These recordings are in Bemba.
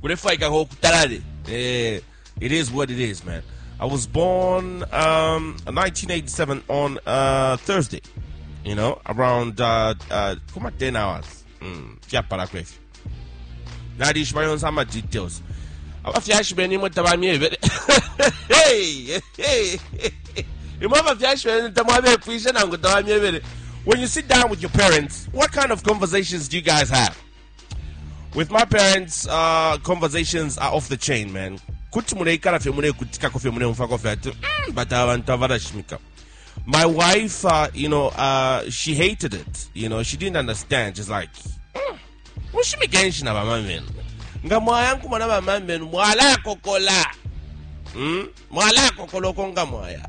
kulefwaikako ukutalale eh, it is what it is man i was born um, 1987 on uh, thursday you know around uh, uh, kuma 10 hours mm, fyapala kwefyo nalishiba yonse ama details abafyashi benu imwe tabamyebele Hey, hey, hey. imwe abafyashi benu tamwabepwishe nangu tabamyebele when you sit down with your parents what kind of conversations do you guys have With my parents, uh, conversations are off the chain, man. Kuti muleikala fye mulekutikako fye muleumfako fye ati mm, but abantu abalashimika my wife, uh, you know, uh, she hated it. You know, she didn't understand. She's like, mm, ushimikenshi na bamamenu nga mwaya nkumona bamamenu mwala kokola mm? mwala kokola oko nga mwaya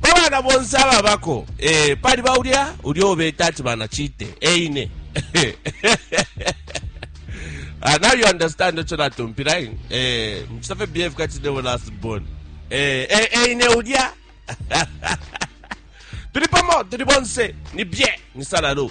Pa bana bonse ababako, ee, paliba ulya, ulya uo beta ati bana Chite, e ine. Ah, now you understand ico natumpila ine. Eh, mucita fye behave kati nebo last born. Eh, eh, eh, ine ulya. Tuli pamo, tuli bonse, ni bie, ni salalo.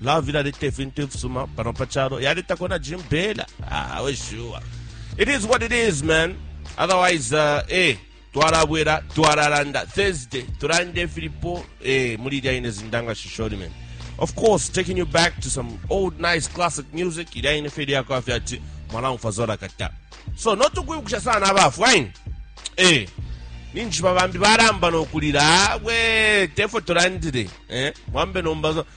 Love ilaleta ifintu ifisuma pano pa chalo, yaletako na Jim Bela. Ah, we sure. It is what it is, man. Otherwise, uh, eh, twalabwera twalalanda thursday tulande filipo eh, muli ilya ine zindanga shisholi man of course taking you back to some old nice classic music ilya ine feli yako afya ati mwanangu fazola kata so notukwibukisha sana abafu aini eh, ninjishiba bambi balamba nokulila we tefo tulandile eh, mwambe nomba